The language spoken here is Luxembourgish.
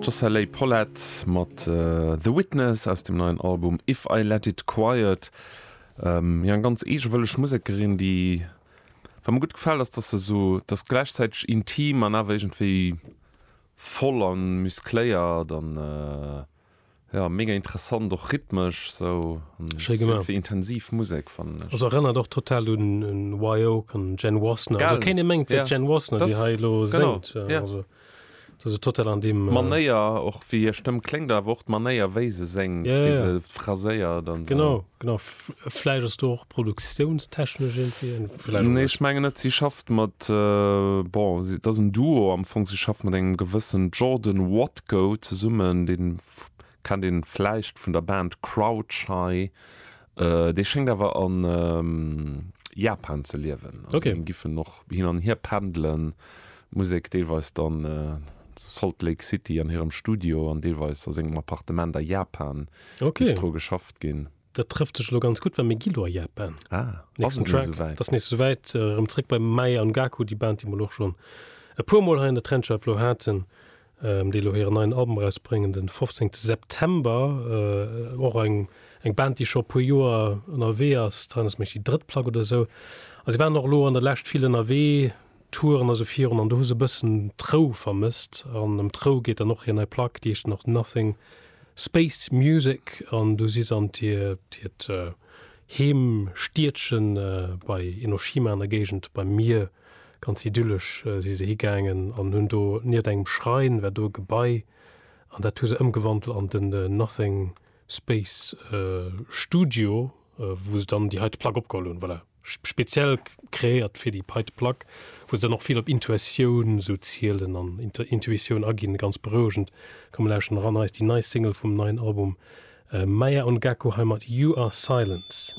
D'Josserley Pollett mat The Witness aus dem neien Album If I Let It Quiet. Jo eng ganz eegewëlleg Musekerin, déi, wat mer gutt gefält ass, dass se esou, dass gläichzäiteg intim an awer iergendwéi voll an muskléiert an Ja mega interessant och rhythmesch sou wéi intensiv Musek fannen ech. Also erënnert och total un Wye Oak an Jen Wasner. Also keen dee mengt et wier d'Jen Wasner déi hei elo séngt. Also dat ass total an deem. D'Manéier och wéi hir Stëmm kléngt awer och d'Manéier wéi se séngt, wéi se phraséiert an sou. Genau, genau. Vläicht ass do och produktiounstechnesch irgendwie en- vläicht och Nee, net. ech mengen net. Si schafft mat, bon, si, et ass en Duo am Fong. Si schafft mat engem gewëssen Jordan Watko zesummen, deen kennt een vläicht vun der Band Crowdshai. Dee schéngt awer a Japan ze liewen. Also Okay. déi giffen och hin an hier pendelen, d'Musek deelweis dann zu Salt Lake City an hirem Studio an deelweis a sengem Appartement a Japan. Okay. Dierft dru geschafft ginn. Dat trëfft sech elo ganz gutt, well mir gi lo a Japan. Ah, ass Nächsten et net Track, esouwäit? dat ass nächst souwäit. Äh, Erëm zréck bei Mae an Gaku, déi Band, déi mer lo och schonn e puer Mol hei an der Trendscheif lo haten, ähm, déi elo hiren neien Album erausbréngen den 15. September. Äh, och eng, eng Band, déi scho e puer Joer ënnerwee ass, Trainers Mech, déi drëtt Plack oder esou. A si waren och elo an der Lescht vill ënnerwee, Touren also virun an do hu se e bëssen d'Rou vermësst an ëm d'Rou geet dann och hir nei Plack, déi heescht dann och Nothing Space Music an do si se an hiert hiert Heemstiedche bei Enoshima an der Géigend beim Mier, ganz idyllesch, si se higaangen an hunn do nieft engem Schrein war do e Gebai an dat hu se ëmgewandelt an den Nothing Space Studio, wou se dann déi heite Plack opgeholl hunn, voilà. speziell kreéiert fir déi Pei de Plaque, wou se dann och vill op Intuatioun esou zielen an Intuitioun aginn. Ganz berouegend. Komm mir lauschten eran, hei ass déi nei Single vum neien Album Maya und Gacko hei mat You Are Silence.